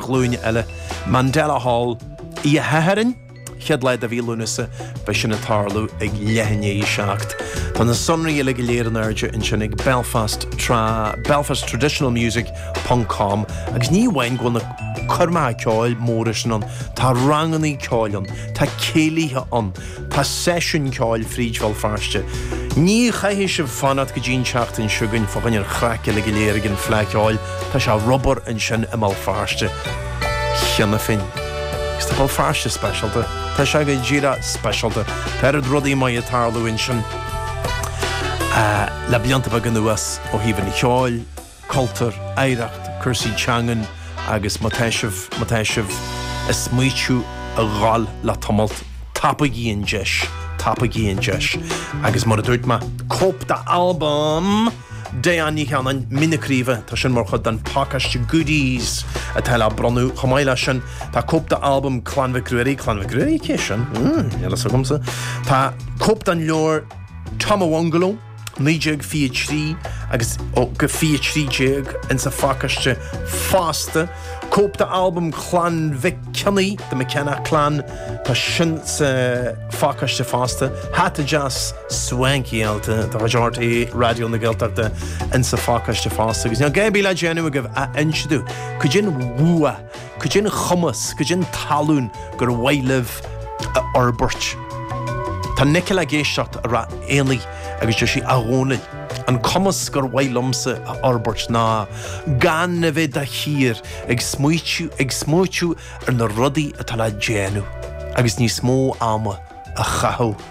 ghlúin eile. Mandela Hall, oíche Shathairn, chéad lá de mhí Lúnasa, beidh sin ag tarlú ag leath i ndiaidh a 7. Tá na sonraí uilig go léir in airde ansin ag Belfast tra, belfasttraditionalmusic ponc com, agus ní amháin go bhfuil na coirmeacha ceoil móra sin ann, tá rangannaí ceoil ann, tá céilithe ann, Tá seisiúin ceoil fríd Bhéal Feirste. Ní chaithfidh sibh fanacht go dtí an tseachtain seo chugainn fá choinne an chraice le go léir ag an Fleadh Cheoil, tá sé ar obair ansin i mBéal Feirste cheana féin. Agus tá Béal Feirste speisialta, tá sé go díreach speisialta, tá oiread rudaí maith ag tarlú ansin le blianta beaga anuas ó thaobh an cheoil, cultúr, oidhreacht, cúrsaí teangan agus má tá sibh, má tá sibh ag smaoitiú a dhul le tamalt, tapaigí an deis, tapaigí an deis. Agus mar a dúirt mé, cóip d'albam Diane Ní Chanainn, Mín na Craoibhe, tá sin mar chuid den pacáiste goodies atá le bronnadh. Chomh maith leis sin, tá cóip d'albam Clann Mhic Ruairí, Clann Mhic Ruairí? Cé sin? Níl a fhios agamsa. Tá cóip den leabhar Tomawongolo. 1923 agus 23 ins a phacáiste fosta, cóip d'albam Chlann Mhic Cionnaith, The McKenna Clan, tá sin sa phacáiste fosta, hata deas swankyáilte de chuid RTÉ Raidió na Gaeltachta ins a phacáiste fosta, agus níl a dhath ar bith le déanamh agaibh ach inse domh cad é an bua! Cad é an cumas, cad é an tallann gur mhaith libh a fhorbairt. Tá Nicola ag éisteacht i Ráth Éanaigh agus deir sí A Dhónaill, an cumas gur mhaith liomsa a fhorbairt ná gan a bheith de shíor ag smaoitiú, ag smaoitiú ar na rudaí atá le déanamh agus níos mó ama a chaitheamh.